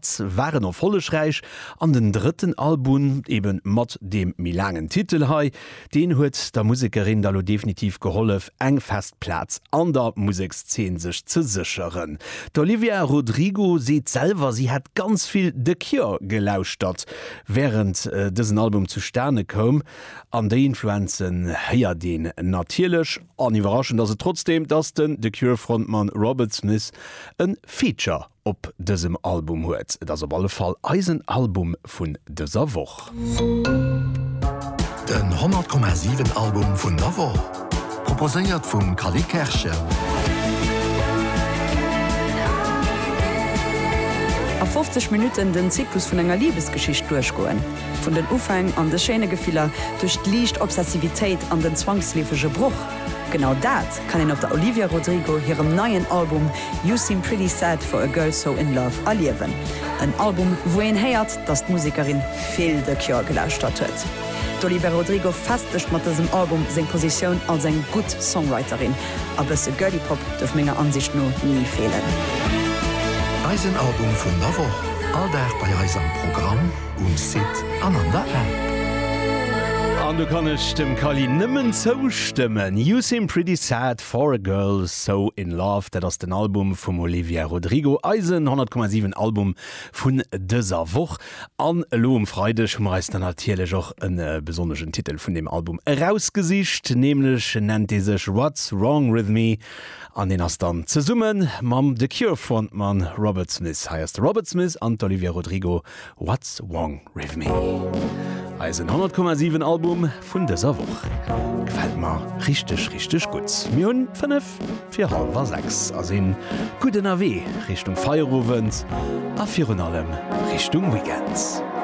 S waren erfollegräich an den drëtten Albun, eben mat deem méi laangen Titel hei, deen huet der Musekerin da lo definitiv gehollef eng fest Plaz an der Musekszeen sech ze sécheren. D'Olivia Rodrigo seet selwer si hätt ganz vill The Cure gelauschtert während dësen Album zu Stane koum an déi Influenzen héiert een natierlech. An iwwerraschend ass et trotzdeem, dass den The Cure Frontmann Robert Smith e Feature op dësem Album huet. Et ass op alle Fall eisen Album vun dëser Woch. Den 100,7 Album vun der Woch, proposéiert vum Cally Kerschen. A 50 Minutten den Zyklus vun enger Libesgeschicht duerchgoen. Vun den Ufäng an de schéine Gefiller, duerch d'liicht Obsessivitéit an den zwangsleefege Broch. Genau dat! kann een op der Olivia Rodrigo hirem neien Album You Seem Pretty Sad For A Girl So In Love erliewen. En Album, wou een héiert, dass d'Musekerin vill The Cure gelauschtert huet. D'Olivia Rodrigo festegt mat dësem Album seng Positioun als eng gutt Songwriterin. A bësse Girly Pop duerf menger Ansicht no ni feelen. Eisen Album vun der Woch, all Dag bei eis am Programm. um Site an an der App. An do kann ech dem Kali nëmmen zoustëmmen, You seem pretty sad for a girl so in love, dat ass den Album vum Olivia Rodrigo, eisen 100,7 Album vun dëser Woch. An elo um Freideg hu mer eis dann natierlech och e besonneschen Titel vun deem Album erausgesicht, nämlech nennt dee sech What's Wrong With Me an deen ass dann zesumme mam The Cure-Frontmann Robert Smith. Hei ass de Robert Smith an d'Olivia Rodrigo What's Wrong With Me, eisen 100 Komma 7 Album vun dëser Woch. Gefält mer richteg richteg gutt. Mir hunn 5 fir halwer 6 a sinn gutt ënnerwee Richtung Feierowend a virun allem Richtung Weekend.